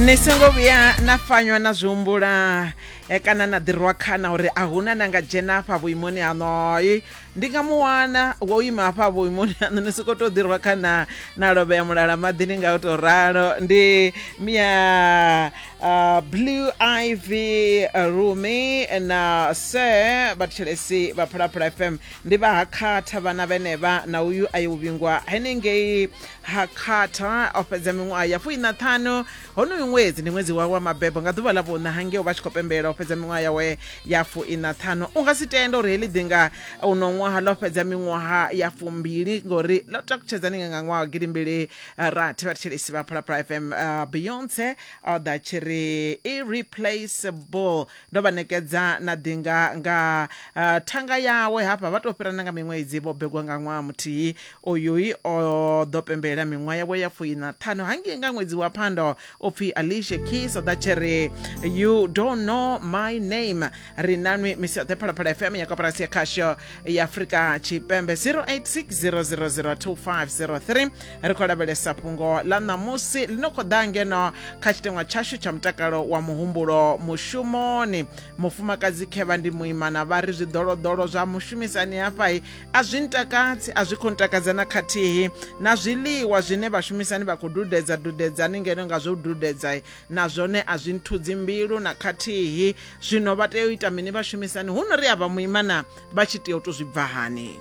ni songo vhuya na fanywa na zwi humbula eh, kana na ḓirwa khana uri a huna na nga dzhena hafha vhuimoni hanoi ndi nga mu wana wo ima hafha vhuimoni haṋu ni soko to ḓirwa khana na lovhea mulala maḓini nga u to ralo ndi mia uh, blue ivy uh, rumi na sir vhathetshelesi vha phalaphala fm ndi vha ha khatha vhana vhenevha na uyu a yo vhingwa henengei ha carter o fhedza miṅwaha ya fuina ṱhanu honoyu ṅwedzi ndi ṅwedzi wawe wa mabebo nga ḓuvha ḽa vhuṋa hangeo vha tshi khou pembela o fhedza miṅwaha yawe ya fuina ṱhanu u nga si tenda uri heḽi ḓinga uno ṅwaha ḽo fhedza miṅwaha ya fumbili ngori ḽo takutshedza ninga nga ṅwaha wa gidimbili rathi vhathetshelesi vha phalaphala fm uh, beyonce o ḓa tshi ri irreplaceable Ndo vha ṋekedza na ḓi nga nga thanga yawe, hafha vha tou fhirana nga miṅwedzi vho begwa nga ṅwaha muthihi. Oyui o ḓo pembelela miṅwaha yawe ya fui na ṱhanu hangei nga ṅwedzi wa Phando, o pfi Alicia Keys o ḓa tshi ri you don't know my name. Ri na nwi misi yoṱhe Phalaphala FM ya koporasi ya khasho ya Afrika Tshipembe 086 000 2503. ri khou lavhelesa fhungo ḽa ṋamusi ḽi no khou ḓa ngeno kha tshiteṅwa tshashu tsha mutakalo wa muhumbulo mushumoni mufumakadzi khevha ndi muimana vha ri zwiḓoloḓolo zwa mushumisani hafhai a zwi ntakadzi a zwi khou ntakadza na khathihi na zwiḽiwa zwine vhashumisani vha khou dudedza dudedzani ngeno nga zwo dudedza na zwone a zwi nthudzi mbilu na khathihi zwino vha tea u ita mini vhashumisani hu no ri a vha muimana vha tshi tea u to zwi bva hani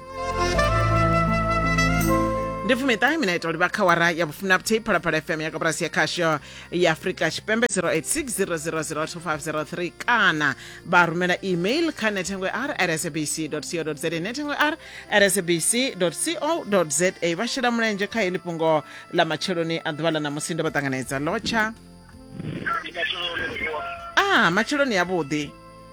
ndi fumiṱahe mina ita uri vha kha wara ya vhufumi na vhuthihi phalaphala fm ya kaburasi ya khasho ya afrika tshipembe 0860002503 kana vha rumela email kha nethengo ya r rsabc co za nethengo ya r rsabc co za vha shela mulenzhe kha heḽi fhungo ḽa matsheloni a ḓuvha ḽa ṋamusi ndo vha ṱanganedza lotsha a matsheloni yavhuḓi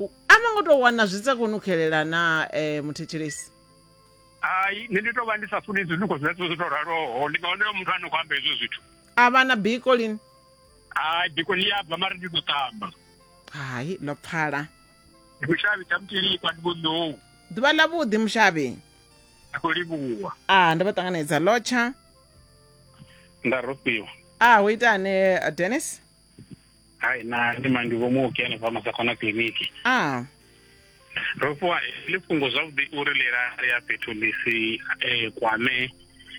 U- a no ngo tou wana zwi sa koni u xelela na um muthetshelesi hai nṋe ndi tou vha ndi sa funi zwinungo zwa zwo tou raloho ndi nga onoyo muthu a no khou amba hezwo zwithu a vha na biko lini hai biko ḽi a bva mara ndi ḓo ṱamba hai ḽo pfala ndi mushavhi tsha mutilikwa ndi vhonḓou ḓuvha ḽa vhuḓi mushavhi ndi khou livhuwa a ndo vha ṱanganedza lotsha nda rofhiwa a ho itani eh, dennis hai na ndi mangi vho muoki hanefha masakona kiliniki ah ro fhiwa ḽi fhungo zwavhuḓi uri ḽi lale ya fhethu ḽi si eh, kwame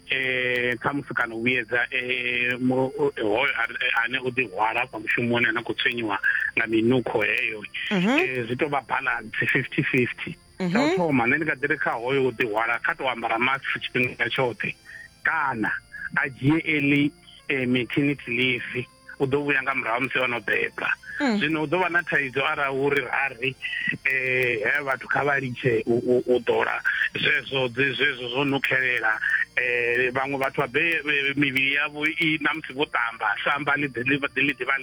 eh khamusi kana u vhuyedza eh, mu- eh, hoyo a- ane o ḓihwala afha mushumoni ane a khou tswenyiwa nga minukho heyo Mhm. Eh, zwi tou vha balance fifty fifty tsha u thoma nṋe ndi nga ḓiri kha hoyo u ḓihwala kha tou ambara mask tshifhinga tshoṱhe kana a dzhie eli eh, maternity leave u ḓo vhuya nga murahu musi ono beba mm. zwino u ḓo vha na thaidzo arali uri rari eh, he vhathu kha vha litshe u ḓola zwezwo zwezwo zwo nukhelela um vhaṅwe vhathu vhabe eh, mivhili yavho i na musi vho ṱamba samba ḽi ḓivha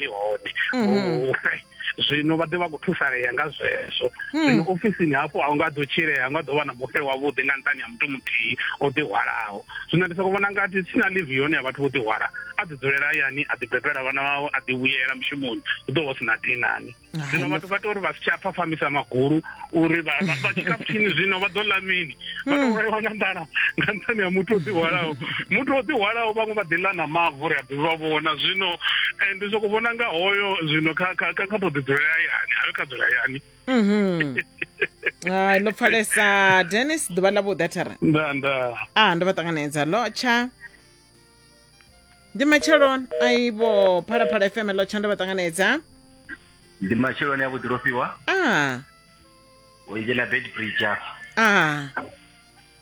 ḽi hone mm-hmm. zwino vha ḓe vha khou thusalea nga zwezwo hmm. zwino ofisini hafho a u nga ḓo tshilea a nga ḓo vha na mufhe wavhuḓi nga nṱani ha muthu muthihi o ḓihwalaho zwino ndi soko vhona ngati si na livi yone ya vhathu vho ḓihwala a ḓi dzulela hayani a ḓi bebela vhana vhawe a ḓi vhuyela mushumoni hu ḓo vha si na dinani zwino vhathu vha tea uri vha si tsha pfafhamisa magulu uri vha tshika pfini zwino vha ḓo ḽa mini vha tou vhulaiwa nga nḓala nga nṱhani ha muthu o ḓihwalaho muthu o ḓihwalaho vhaṅwe vha ḓi ḽa na mavu ri a ḓi vha vhona zwino eh, ndi soko vhona nga hoyo zwino kha kha kha kha to ḓi dzula hayani hayo kha dzula hayani mhm. hai ḽo pfalesa dennis ḓuvha ḽa vhuḓathara nda nda a ah, ndo vha ṱanganedza lotsha ndi matsheloni aibo phalaphala fm lo tshanda vha ṱanganedza ndi matsheloni a vhuḓi lofhiwa a u dzhena bed bridge afha a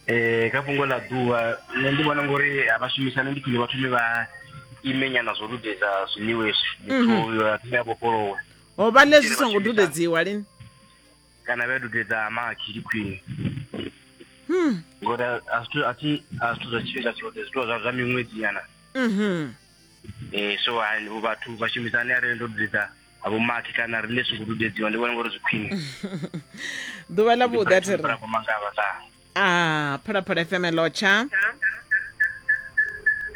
um kha fhungo ḽa ḓuvha nṋe ndi vhona ngori a vha shumisane ndi khwine vha thome vha ime nyana zwo dudedza zwiḽiwa hezwi muthu uyo a thome a vhofholowe ho vha ḽe zwi songo dudedziwa lini kana vha dudedza makhi ndi khwine Hmm. ngori a- a zwithu- a thi a zwithu zwa tshifhinga tshoṱhe zwithu zwa zwa miṅwedzi nyana Mhm. um so ha- vhathu vha shumisane arali ndo dudedza avho makhi kana riṋe songo dudedziwa ndi vhona ngori zwi khwine ḓuvha ḽa vhuḓi a thi ri Murafho mangavha sa a phalaphala fm lotsha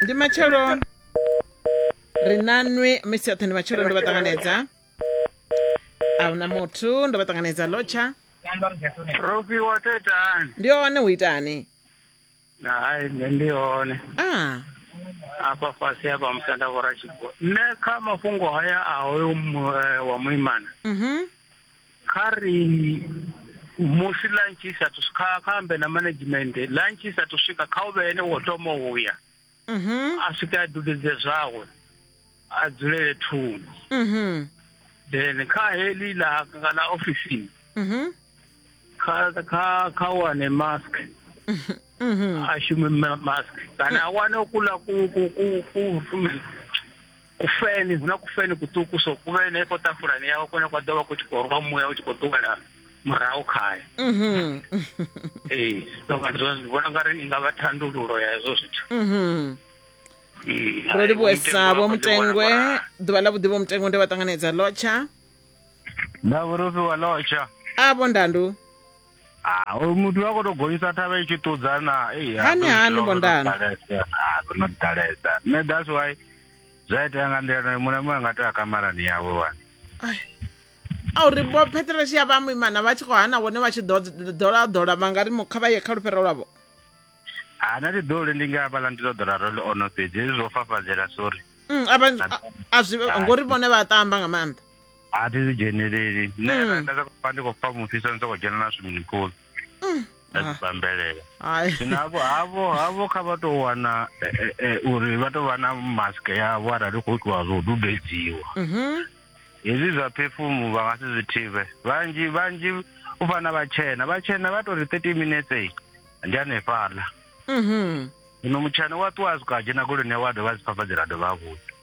ndi matsheloni ri na nwi misi yoṱhe ndi matsheloni ndi vha ṱanganedza a huna muthu ndo vha ṱanganedza lotsha rofiwa tetani ndi one u itani hai nṋe ndi hone a afha fhasi hafha musanda vhora tshigwa nṋe kha mafhungo haya a hoyo mu- eh, wa muimana mhm kha ri musi lunch i sathu kha kha ambe na management lunch i sathu swika kha u vhe ene wo thoma uya mhm. a swike a dudedze zwawe a dzulele thungo mhm. then kha heli la la ofisini mhm. kha kha kha wane mask a shume mask kana a wane ukula ku ku ku ku kufeni huna kufeni kuṱuku so ku vhe henefho ṱafulani yawe kone kwa ḓo vha ku tshi khou rwa muya u tshi khou ṱuwela murahu khayo mhm. ee so ndi vhona nga ri i nga vha thandululo ya hezwo zwithu mhm. ro livhuwesa vho mutengwe ḓuvha ḽa vhuḓi vho mutengwe ndi vha ṱanganedza lotsha na vhurufhi wa lotsha a vho ndandu Ah, hoyu muthu vha khou tou gonyisa thavha i tshi ṱudza na ei, ha, Hani, ndo hani, ḓivha uri Bondani? ndo ḓalesa. Ah, ndo no ḓalesa nṋe that's why zwa itea nga nḓila nayo muṋe muya nga tea kamarani yawe wani a uri vho pheteletshi ya vha muimana vha tshi khou hana vhone vha tshi ḓolaḓola vha nga ri mu- kha vha ye kha lufhero lwavho ha na tiḓoli ndi nga hafhaḽa ndi ḓo ḓola role ono fhedzi hezwi zwo fafadzela sorry Mm, a vha- a- a zwi- ngori vhone vha tamba nga maanḓa a thi zwi dzheneleli nṋe Mm. nda- nda sokou pfa ndi khou pfa mufhiso ndi sokou dzhena na swimming pool nda Ah. dzibambelela Hai. zwino hafho hafho hafho kha vha tou wana eh, eh, eh, uri vha tou vha na mask yavho arali hu khou itiwa zwo dubedziwa Mhm. hezwi zwa phefumu vha nga si zwi thivhe vhanzhi vhanzhi u fana vhatshena vhatshena vha tou ri 30 minutes eh, ndi hanefhaḽa Mhm. zwino mutshena wa ṱuwa a swika a dzhena goloni yawe a dovha a dzi fafadzela a dovha a vhuya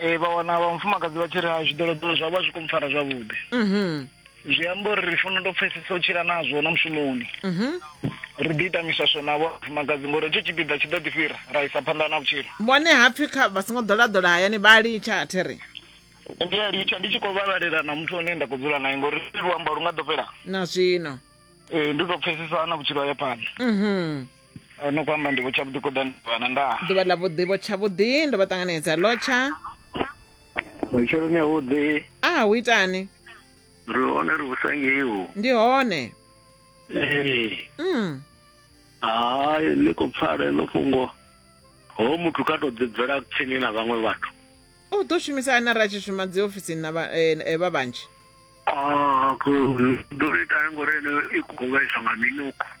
ee vha wana vha mufumakadzi vha tshi ri ha zwiḓoloḓolo zwa vha zwi khou mpfara zwavhuḓi mhm zwi amba uri ri fanela u tou pfesesa u tshila nazwo na mushumoni mhm ri ḓi ita miswaswo navho vhafumakadzi ngori hetsho tshipiḓa tshi ḓo ḓi fhira ra isa phanḓa na vhutshilo vhone hapfi kha vha songo ḓolaḓola hayani vha litsha a thi ri ndi a litsha ndi tshi khou vhalalela na muthu ane nda khou dzula naye ngori luamba lu nga ḓo fhela na zwino ee ndi tou pfesesa na vhutshilo ha ya phanḓa mhm o no khou amba ndivho tshavhuḓi kho ḓani vhana nda ḓuvha ḽa vhuḓi vho tshavhuḓi ndo vha ṱanganedza lotsha matsheloni avhuḓi a hu itani ri hone ri vhusangeiwo ndi hone ee mm. hayi ḽi khou pfala ḽo fhungo ho muthu kha tou ḓibvela tsini na vhaṅwe vhathu u ḓo shumisa ane ra tshi shuma dzi ofisini na eh, eh, vha vhanzhi ah, ḓo ita ngori ene i khou vhaisa nga minuku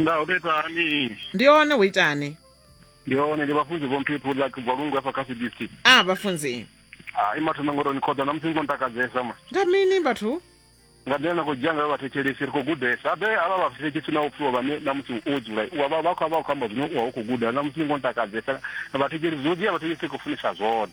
nga u betani ndi one hu itani ndi hone ndi vhafunzi vho mphephu ḽa kubva lungu afha kha cdc a vhafunzi hai mathoma ngori ni khoḓa na musi ni khou ntakadzesa ma nga mini vhathu nga nḓila na khou dzhia ngayo vhathetshelesi ri khou gudesa habe avha vhathetshelesi na upfiwa vhane na musi wo dzula u avha vha khou vha khou amba zwine u vha u khou guda na musi ni khou ntakadzesa vhathetshelesi zwo dzhia vhathetshelesi khou funisa zwone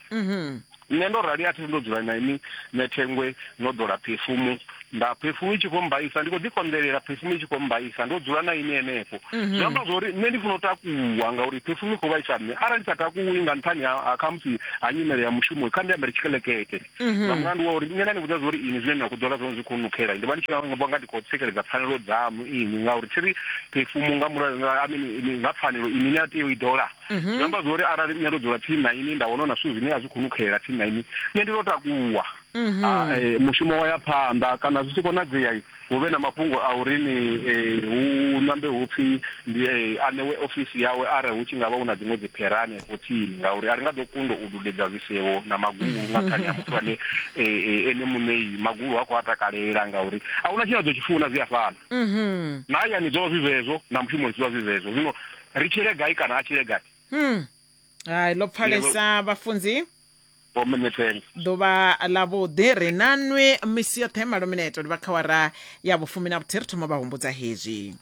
mhm. nṋe ndo rali a thi ndo dzula na ini nṋe thengwe no ḓola phefumu nda phefumu i tshi khou mbaisa ndi khou ḓikonḓelela phefumu i tshi khou mbaisa ndo dzula na ini henefho mhm. zwi amba zwori nṋe ndi funa u takuwa ngauri phefumu i khou vhaisa nṋe arali ndi sa takuwi nga nṱhani ha khamusi ha nyimele ya mushumo kha ndi ambele tshikelekete mhm. nga mulandu wa uri nṋe nda ni vhudza zwori ini zwine na khou ḓola zwone zwi khou nukhela ndi vha ndi tshi vha nga ndi khou tsikeledza pfanelo dzamu ini ngauri thi ri phefumu nga mulayo nga pfanelo ini ni a tea u i ḓola mhm. zwi amba zwori arali nṋe ndo dzula tsini na ini nda wana na zwithu zwine a zwi khou nukhelela tsini na ini nṋe ndi to takuwa mhm. ah, eh, mushumo wa ya phanḓa kana zwi tshi konadzea hu vhe na mafhungo a uri ni eh, hu nambe hu pfhi ndi eh, aṋewe ofisi yawe arali hu tshi nga vha hu na dziṅwe dziphera hanefho tsini ngauri a ri nga ḓo kundo u dudedza zwisevho na magulu nga khani ya muthu ane ene muṋei magulu ha khou a takalela ngauri a hu na tshine a ḓo tshi funa zwi a fana mhm. na hayani zwo vha zwi zwezwo na mushumoni zwi vha zwi zwezwo zwino ri tshile gai kana a tshile gai hmm. hai ḽo pfalesa vhafunzi ḓuvha ḽa vhuḓi ri na nwi misi yoṱhe malo mineto ndi vha kha wara ya vhufumi na vhuthihi ri thoma vha humbudza hezwi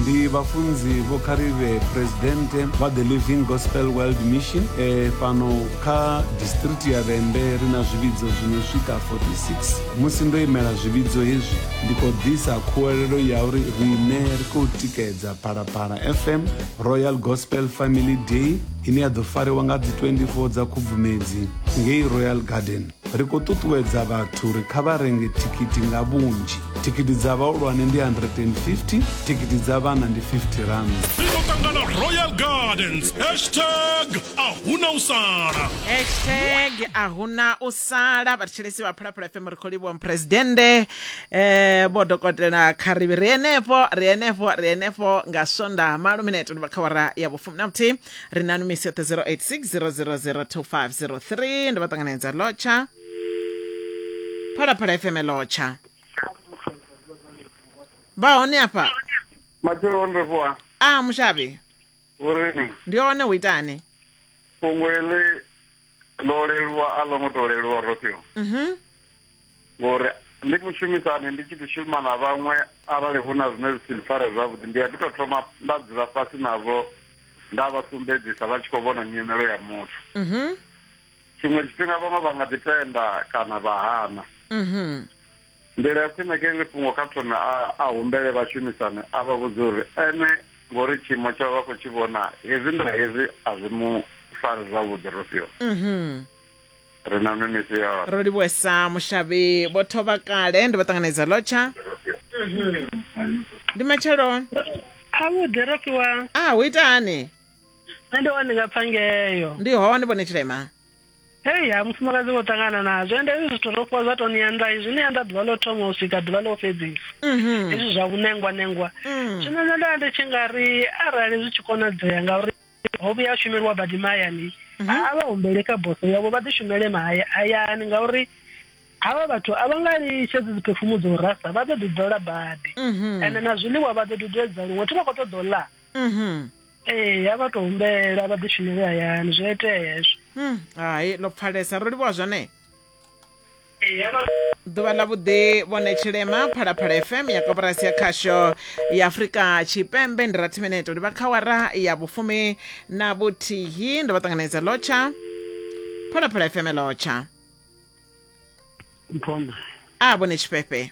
ndi vhafunzi vho kharivhe presidente vha the living gospel world mission e fhano kha district ya vhembe ri na zwivhidzo zwino swika 46 musi ndo imela zwivhidzo hezwi ndi khou ḓisa khuwelelo ya uri riṋe ri khou tikedza phalaphala fm royal gospel family day ine ya ḓo fariwa nga dzi 24 dza khubvumedzi ngei royal garden ri khou ṱuṱuwedza vhathu uri kha vha renge thikhithi nga vhunzhi thikhithi dza vhahulwane ndi 150 thikhithi dza vhana ndi 50 rand ṱangana royal gardens hashtag ahuna u sala hashtag ahuna u sala vhathetshelesi vha phalaphala fm ri khou livhuwa muphuresidennde eh vho dokotela kharivhi ri henefho ri henefho ri henefho nga swonda malo minete ndivha kha wara ya vhufumi na vhuthihi ri na numisi yoṱhe 0860002503 ndi vha ṱanganedza lotsha phalaphala fm lotsha vha hone afha matshelo o nrefuwa a mushavhi vhurimi ndi hone hu itani fhungo ele ḽo leluwa a ḽo ngo to leluwa rofio mhm. ngori ndi mushumisani ndi tshi ḓi shuma na vhaṅwe arali hu na zwine zwi si mpfare zwavhuḓi ndi a ḓi to thoma nda dzula fhasi navho nda vha sumbedzisa vha tshi khou vhona nyimelo ya muthu mhm. tshiṅwe tshifhinga vhaṅwe vha nga ḓi tenda kana vha hana mhm. Nḓila ya khwine ke ḽi fhungo kha phone a, a humbele vhashumisani a vha vhudze uri ene ngori tshiimo tshawe vha khou tshi vhona hezwi nda hezwi a zwi mu fari zwavhuḓi Rofhiwa. Mhm. Ri na mimisi yone. Ro livhuwesa mushavhi vho thovha kale ndi vho ṱanganedza lotsha. Ndi matshelo. Avhuḓi Rofhiwa. Ah hu ita hani? Nṋe ndi hone ndi nga pfa ngeo. Ndi hone vhone Tshilema. hei ha mufumakadzi vho ṱangana nazwo ende hezwi zwithu ro fhiwa zwa to ni anḓa izwi ni anḓa ḓuvha ḽo thoma u swika ḓuvha ḽo fhedzisa mhm. hezwi zwa vhunengwa nengwa mm. zwino nṋe nda ndi tshi nga ri arali zwi tshi konadzea ngauri ho vhuya shumeliwa badi mahayani mhm. a vha humbele kha boso yavho vha ḓi shumele mahayani ngauri havha vhathu a vha nga litshedzi dziphefumu dza u rasa vha ḓo ḓi ḓola badi mhm. ende na zwiḽiwa vha ḓo dudedza luṅwe thi vha khou ṱoḓa u ḽa ee a vha to humbela vha ḓi shumele hayani zwi itea hezwo hmm, hai ḽo pfalesa ro livhuwa zwone ḓuvha ḽa vhuḓi vhone tshilema phalaphala fm ya koporasi ya khasho ya afurika tshipembe ndi rathi mineto ndi vha khawara ya vhufumi na vhuthihi ndo vha ṱanganedza lotsha phalaphala fm lotsha a vhone tshifhefhe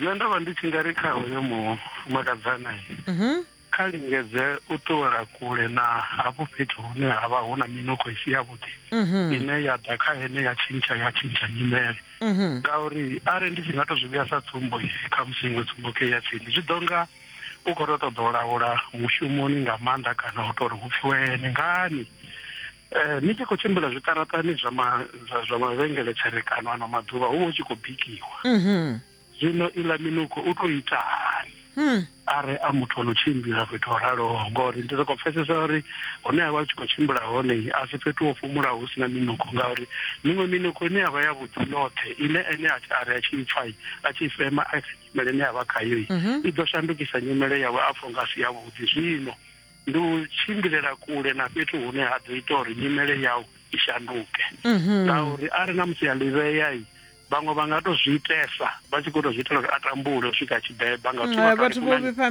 Nṋe ndo vha ndi tshi nga ri kha hoyo mufumakadzana mhm. kha lingedze u ṱuwela kule na hafho fhethu hune ha vha hu na minukho i si yavhuḓi mhm. ine ya ḓa kha ene ya tshintsha ya tshintsha nyimele mhm. ngauri arali ndi tshi nga to zwi vhuya sa tsumbo kha musi iṅwe tsumbo ke ya tsini zwi ḓo nga u khou to ṱoḓa u laula mushumoni nga maanḓa kana u tori hu pfiwe ene ngani Eh, ni tshi khou tshimbila zwiṱaraṱani zwa ma zwa zwa mavhengele tserekano ano maḓuvha hu vha hu tshi khou bikiwa Mhm. zwino iḽa minukho u tou ita hani Hmm. are a muthu ono tshimbila fhethu ho raloho ngori ndi soko pfesesa uri hune a vha a tshi khou tshimbila hone a si fhethu ho fhumulaho hu sina minukho ngauri miṅwe minukho ine yavha ya vhuḓi yoṱhe ine ene a tshi- a ri a tshi i pfa i, a tshi i fema a kha nyimele ine yavha khayo i, i ḓo shandukisa nyimele yawe a pfha unga a si yavhuḓi zwino ndi u tshimbilela kule na fhethu hune ha ḓo ita uri nyimele yau i shanduke mhm. ngauri a ri na musi ya livhea i vhaṅwe vha nga to zwi itesa vha tshi khou to zwi itela uri a tambule u swika tshibeba nga vhathu vho vhifha